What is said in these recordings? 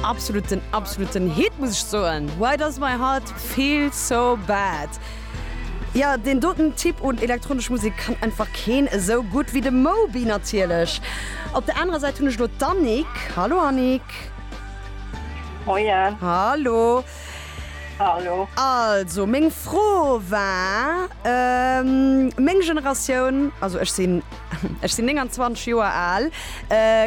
Absoluten absoluten Hit muss ech soen, Why does my heart feel so bad? Jo, deen doten Typ un elektronesch Musek kann einfach keen esou gutt wéi de Moby natierlech. Op der anerer Säit hunn ech elo d'Annick. Hallo Annick. Moien. Hallo. Also meng Fro war, meng Generatioun, also ech sinn ech sinn 29 Joer al,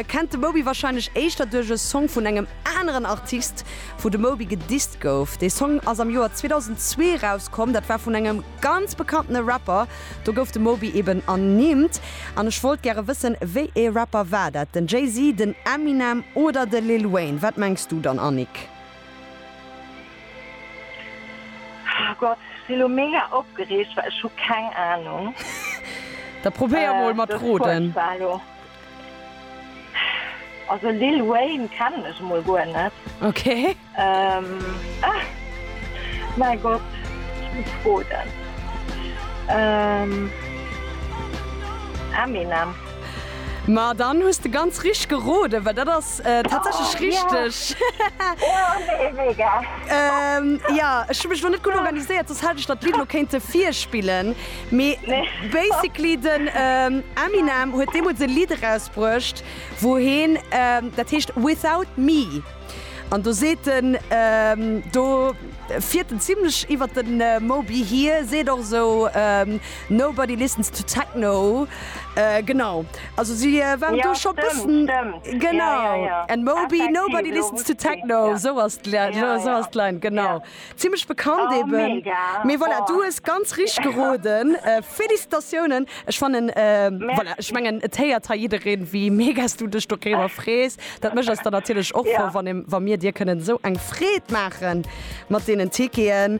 kennt de Moby warscheinlech éischter duerch e Song vun engem aneren Artist, wou de Moby gedisst gouf. Dee Song ass am Joer 2002 erauskomm, dat war vun engem ganz bekanntene Rapper, do gouf de Moby eben ernimmt. An ech wollt gäre wëssen, wéi ee Rapper war dat, den Jay-Z, den Eminem oder de Lil Wayne? Wat mengs du dann, Annick? Oh Gott, ech si lo mega opgereegt, well ech hu keng Ahnung. Da probéier mol mat roden. Also Lil Wayne kennen ech emol guer net. Ok. Mäi Gott, ech muss roden. Eminem. Ma dann hues de ganz richteg geroden, well dat ass. Tatsächlech richteg! Jo, ech hu mech elo net gutt organiséiert, soss hätt ech der d'Lidd elo kéinte virspillen. Mee basically den Eminem huet deemools e Lidd erausbruecht, wou heen, dat heescht Without Me. An do seet en, do fiert en zimlech iwwert de Moby hier, seet och esou, Nobody listens to techno, genau also si waren do scho bëssen genau en Moby nobody listens to techno sou ass sou ass d'Line genau zimlech bekannt eeben mee voilà du hues ganz richteg geroden. Felicitatiounen ech fannen voilà ech mengen et héiert hei jiddereen wéi mega s du dech doriwwer frees. Dat mécht eis dann natierlech och frou wann wa mir dir kënnen esou eng Freed maache mat deenen Ticketen.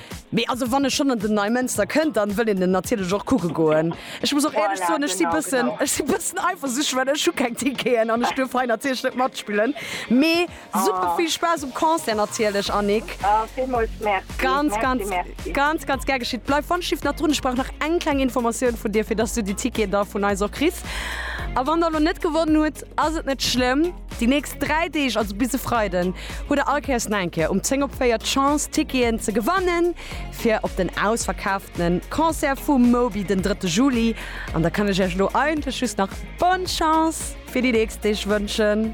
Mee also wann e schonn an den Neimënster kënnt, dann wëll een en natierlech och kucke goen. Ech muss och éierlech soen, ech si bëssen, ech si bëssen eifersüchteg, well ech hu keng Ticketen an ech duerf hei natierlech net matspillen. Mee super vill Spaass um Concert natierlech, Annick. Villmools Merci. Ganz, ganz, ganz, ganz gär geschitt. Bleif wannschifft nach drun, ech brauch nach eng kleng Informatioun vun dir, fir dass du déi Ticketen da vun eis och kriss. A wann der elo net gewonnen hutt, ass et net schlëmm. Déi nächst 3 Deeg, also bis e Freiden, hutt der all Kéiers neng Kéier um 10 op 4 d'Chance, Ticketen ze gewannen fir op den ausverkaaftene Concert vum Moby den 3. Juli. An da kann ech Iech elo eigentlech just nach Bonne Chance fir déi nächst Deeg wënschen.